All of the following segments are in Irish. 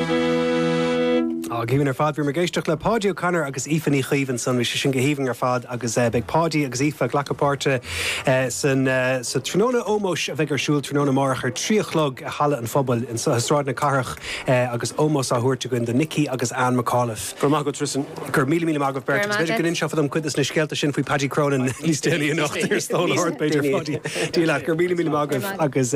Go haoibhinn ar fad. Bhí mé ag éisteacht le Páidí O'Connor agus Aoife Ní Chaoimh ansan. Bhí sé sin go haoibhinn ar fad agus beidh Páidí agus Aoife ag glacadh páirte san sa tráthnóna ómóis a bheidh ar siúl tráthnóna amárach ar a trí a chlog i Halla an Phobail i Sráid na Cathrach agus ómós á thabhairt againn do Nicky agus Anne McAuliffe. Go raibh maith agat, Tristan. Go raibh míle míle maith agaibh beirt agus b'fhéidir go n-inseofa dom cuid dos na scéalta sin faoi Paddy Cronin níos déanaí anocht ar Stól Ard b'fhéidir Pháidí. Dia leat. Go raibh míle míle maith agaibh agus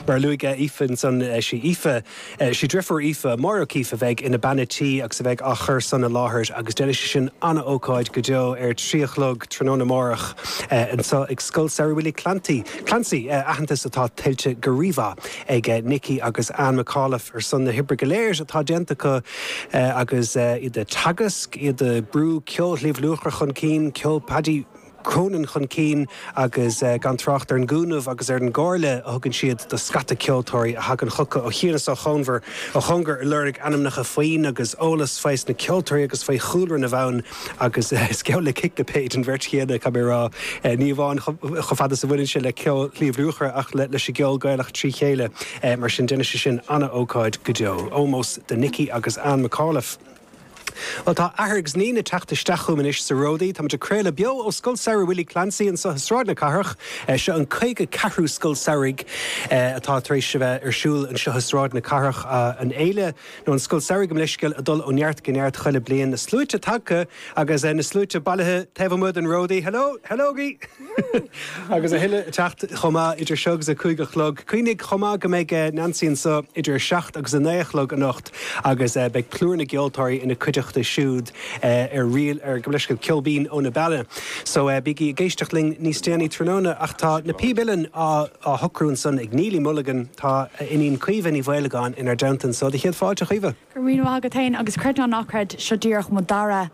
mar a luaigh Aoife ansan, sí Aoife. Is í driofúr Aoife, Máire O'Keefe, a bheidh ina bean a tí agus a bheidh á chur san i láthair agus déanfaidh sí sin an-ócáid go deo ar a trí a chlog tráthnóna amárach anseo ag Scoil Samhraidh Willie Clancy, Clancy, aitheantas atá tuillte go rímhaith ag Nicky agus Anne McAuliffe ar son na hoibre go léir atá déanta acu agus iad ag teagasc, iad ag brú ceol Shliabh Luachra chun cinn, ceol Paddy. Cronin chun cinn agus gan trácht ar an gcúnamh agus ar an gcomhairle a thugann siad do scata ceoltóirí a thagann chucu ó chian is ó chón ó chóngar ag lorg ainmneacha foinn agus eolas fés na ceoltóirí agus faoi chúlra na bhfonn agus is geall le ciclipéid an bheirt chéanna, caithfidh mé a rá, ní amháin chomh fada is a bhaineann sé le ceol Shliabh Luachra ach leis an gceol Gaelach trí chéile. Mar sin déanfaidh sé sin an-ócáid go deo. Ómós do Nicky agus Anne McAuliffe. Bhuel, tá athair agus iníon ag teacht isteach chugam anois sa ródaí. Táimid ag craoladh beo ó Scoil Samhraidh Willie Clancy anseo i Sráid na Cathrach. Seo an caoga ceathrú Scoil Samhraidh atá tar éis a bheith ar siúl anseo i Sráid na Cathrach. An fhéile, nó an Scoil Samhraidh gabh mo leithscéal a dhul ó neart go neart chuile bliain. Na sluaite tagtha agus na sluaite bailithe taobh amuigh den ródaí. Hello! Hello-gaí! Agus a thuilleadh ag teacht chomh maith idir seo agus a cúig a chlog, cuimhnigh chomh maith go mbeidh Nansaí anseo idir a seacht agus a naoi a chlog anocht agus beidh plúr na gceoltóirí ina cuideachta siúd arís ar ndóigh le haghaidh Ceol Binn ó na Beanna. So bígí ag éisteacht linn níos déanaí tráthnóna. Ach tá na píb uilleann á socrú ansan ag Neilí Mulligan. Tá a iníon Caoimhe Ní Mhaolagáin inár dteannta anseo do chéad fáilte, Caoimhe. Go raibh míle maith agat féin agus creid nó ná creid, seo díreach mo dara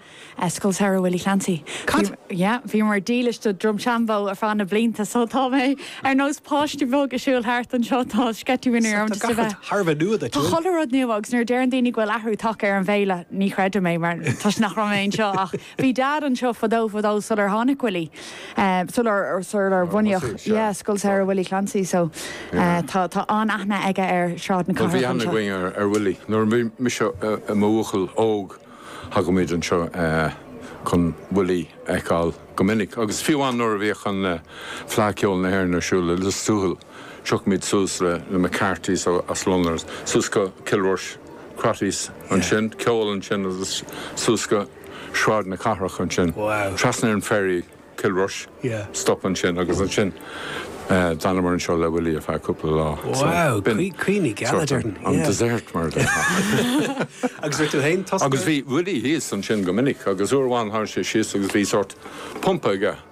Scoil Samhraidh Willie Clancy. Cad? Yeah, bhíomar dílis do Drumshanbo ar feadh na blianta so tá mé ar nós páiste beag ag siúl thart anseo, tá sceitimíní orm just a bheith. So tá gach rud thar a bheith nua duit, an bhfuil? Tá chuile rud nua agus nuair a deireann daoine go bhfuil athrú tagtha ar an bhféile, ní chreidim é mar toisc nach raibh mé anseo ach. Bhí Dad anseo fadó fadó sular tháinig Willie, sular, sular bunaíodh, yeah, Scoil Samhraidh Willie Clancy so tá, tá an-aithne aige ar Shráid na Cathrach anseo. Bhí aithne againn ar, ar Willie. Nuair a bhí mise i mo bhuachaill óg thagadh muid anseo chun Willie a fheiceáil go minic agus fiú amháin nuair a bhíodh an, Fleadh Cheoil na hÉireann ar siúl i Lios Tuathail. tiocfaimid suas le na McCarthys as Londain suas go Cill Rois, Crotty's ansin, ceol ansin agus suas go Sráid na Cathrach ansin, trasna ar an ferry, Cill Rois, stop ansin agus ansin d'fhanamar anseo le Willie ar feadh cúpla lá. Wow, caoineadh geal a deireann. An desert mar a deir. Agus bhí tú féin tosnaithe? Agus bhí Willie thíos ansin go minic agus uair amháin tháinig sé síos agus bhí sórt pump aige.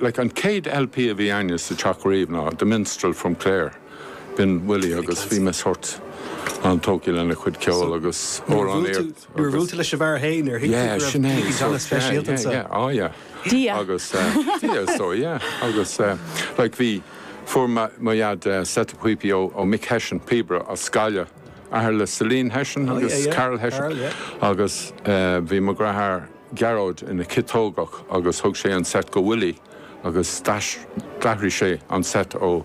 like An céad LP a bhí againne sa teach riamh ná The Minstrel from Clare b'in Willie agus bhí mise sórt an-tógtha lena chuid ceoil agus amhránaíocht agus Nuair a bhuail tú leis an bhfear féin ar thuig tú go raibh McCoy an-speisialta anseo? yeah yeah oh yeah Dia! agus Dia! so yeah agus like bhí fuair mo dhaid set píopaí ó Mick Hession, píobaire as Gaillimh, athair le Celine Hession agus Carl Hession agus bhí mo dheartháir Gearóid ina ciotógach agus thug sé an set go Willie agus d'athraigh sé an set ó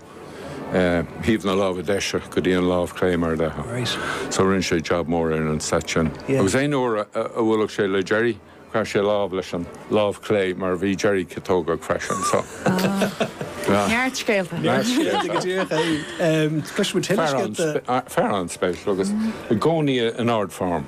thaobh na láimhe deise go dtí an lámh chlé mar a bheadh. So rinne sé jab mór ar an set sin. Agus aon uair a bhuailfeadh sé le Gerry, chroith sé lámh leis an lámh chlé mar bhí Gerry ciotógach freisin so. Neart scéalta. Neart scéalta go díreach. Cloisfimid tuilleadh scéalta. Fear an-speisialta agus i gcónaí in ard form.